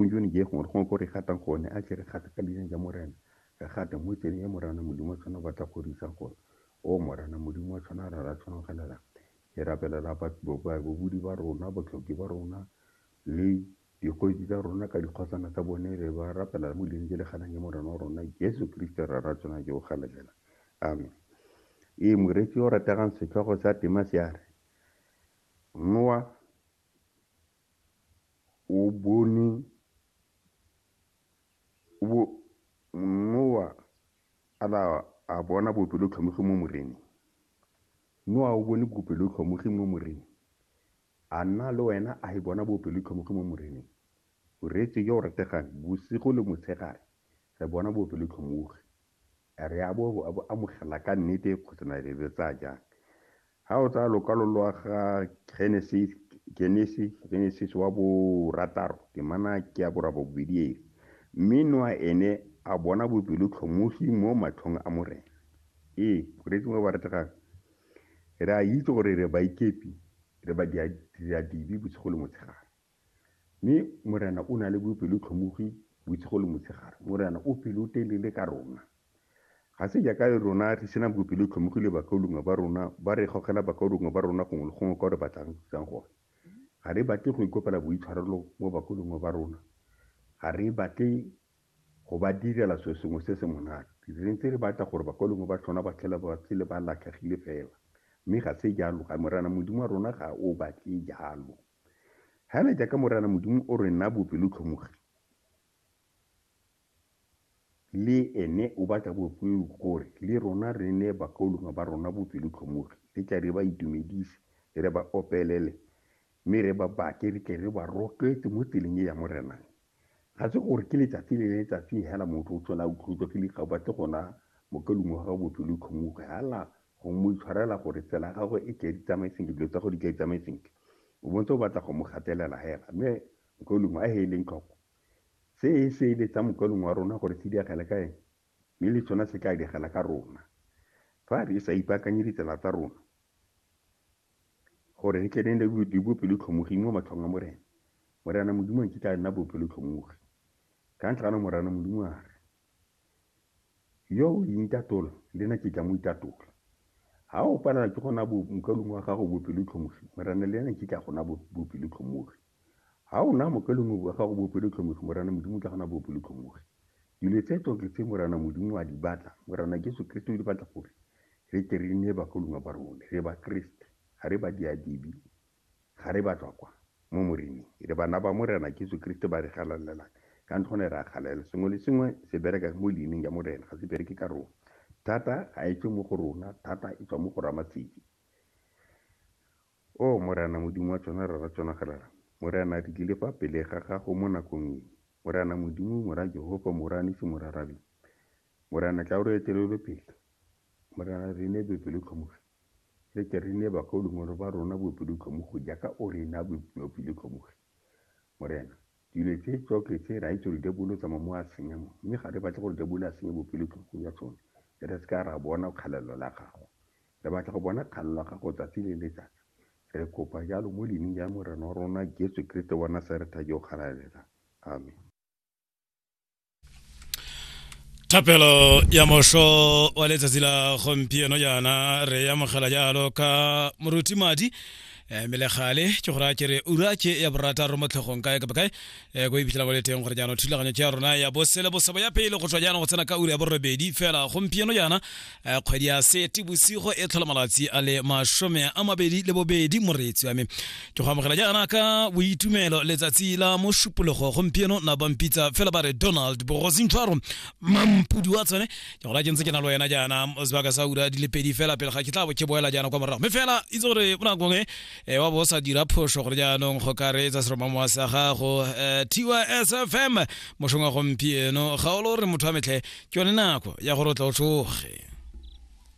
Gompieno ke gongwe go re gatang gone, a tle re gate ka leina ja Morena, re gate mo tseleng e Morana Modimo a tshwanang batla go re isang gone. O Morana Modimo a tshwana ra ra tshwanogelelang, ke rapelela babudi ba rona, batlhoki ba rona le dikgosi tsa rona ka dikgosana tsa bone, re ba rapela mo dilong tse le ganang e Morena wa rona Jesu Kriste ra ra tshwana jo galelela. Amen. Ee moreetsi yo rategang setlhogo sa tema se a re, Noa o bone Noa a ba a bona bopelotlhomogi mo Moreneng. Noa o bone bopelotlhomogi mo Moreneng. A nna le wena a e bona bopelotlhomogi mo Moreneng? O reetse yo o rategang, bosigo le motshegare re bona bopelotlhomogi. Re a bo amogela ka nnete kgotsa na re betsa jang? Ha o tsaya lokwalo lwa ga Genesis, Genesi, Genesis wa borataro, temana ke ya borabobedi e re, Mme Noa ene a bona bopelotlhomogi mo matlhong a Morena. Ee, boreetsi ba ba rategang, re a itse gore re baikepi, re badiadibi bosigo le motshegare. Mme Morena o na le bopelotlhomogi bosigo le motshegare. Morena o pelotelele ka rona. Ga se jaaka rona re sena bopelotlhomogi le bakaulengwe ba rona ba re gogela bakaulengwe ba rona gongwe le gongwe kwa re batlang thusang gone. Ga re batle go ikopela boitshwarelo mo bakaulengwe ba rona. Ga re batle go ba direla selo sengwe se se monate. Re ntse re batla gore bakaulengwe ba tlhona ba tlhela ba phele ba latlhegile fela. Mme ga se jalo. Ga Morena Modimo wa rona ga o batle jalo. Hana jaaka Morena Modimo o re naa bopelotlhomogi, le ene o batla bopelotlhomogi gore le rona re neye bakaulengwe ba rona bopelotlhomogi. Re tla re ba itumedise, re ba opelele, mme re ba bake re tle re ba rotloetse mo tseleng e ya Morena. Ga se gore ke letsatsi le letsatsi hela motho o tswela utlwetswa ke dikgau batle gona mokelumo wa gago botse le tlhomoge hala go mo itshwarela gore tsela ya gago e tle di tsamaye sentle dilo tsa go di tle di tsamaye sentle o bontse o batla go mo gatelela hela mme mokelumo a he e leng tlhoko se e se ile tsa mokelumo wa rona gore se diagele ka eng mme le tsona se tla diagela ka rona fa re sa ipaakanye ditsela tsa rona gore re tle re nne le bopelotlhomogi mo matlhong a Morena. Morena Modimo a nkitla a nna bopelotlhomogi. Ka ntlha ana Morena Modimo a re, Yo o intatola, le nna ke tla mo itatola. Ha o palelwa ke go na mokalung wa gago bopelotlhomogi, Morena le ena nkitla go na bopelotlhomogi. Ha o na mopelonomi wa gago bopelotlhomogi, Morana Modimo o tla go na bopelotlhomogi. Dilo tse tsotlhe tse Morana Modimo a di batla, Morana Jesu Keresete o di batla gore re tle re nne bagolongwa ba rone. Re ba Keresete, ga re ba diadebi, ga re batswakwa mo Moreneng. Re bana ba Morena Jesu Keresete ba re galalelang, ka ntlha gone re a galalela. Sengwe le sengwe se bereka mo leineng ya Morena, ga se bereke ka rona. Thata ga e tswe mo go rona, thata e tswa mo go Ramasedi. Oo Morena, Modimo wa tsona rara tsona garara, Morena, re tlile fa pele ga Gago mo nakong e, Morena, Modimo, Mora Jehofa, Mora Nisi, Mora Rabi. Morena, tla o re etelele pele. Morena, re neye boepelotlhomogi. Re tle re neye bakaulengwalo ba rona boepelotlhomogi jaaka O re naa boepelotlhomogi. Morena, dilo tse tsotlhe tse, re a itse gore diabolo o tsamaya mo a senya mo, mme ga re batle gore diabolo a senye boepelotlhomogi jwa tsone, re se ka ra bona kgalelo la Gago. Re batla go bona kgang lwa gago tsatsi le letsatsi. Re kopa jalo mo leining la Morena wa rona Jesu Keresete wa Nasaretha yo o galalelang. Amen. Thapelo ya moso wa letsatsi la gompieno jaana re e amogela jalo ka moruti madi um mme legale ke gore a kere ura ke ya borataro mo tlhogong kae kapa kae um ko iphitlhela bo le teng gore jaanong thulaganyo ke ya rona ya bosele bosebo ya pele go tswa jaanong go tsena ka ura ya borobedi fela gompieno jaana um kgwedi ya sete bosigo e tlhola malatsi a le masome a mabedi le bobedi moreetsi wa me ke go amogela jaana ka boitumelo letsatsi la mošupologo gompieno na bampitsa fela ba re donald bogosintshwaro mampudi wa tsone gona ke ntse ke na le wena jaana sebaka sa ura di le pedi fela pele ga ke tla bo ke boela jaana kwa morago mme fela itse gore mo nakong e eh, wa bo sa dira phoso gore jaanong go ka reetsa seromamowa sa gago eh, tys fm mošong wa gompieno ga o le gore motho wa metlhe ke yone nako ya gore o tla o tsoge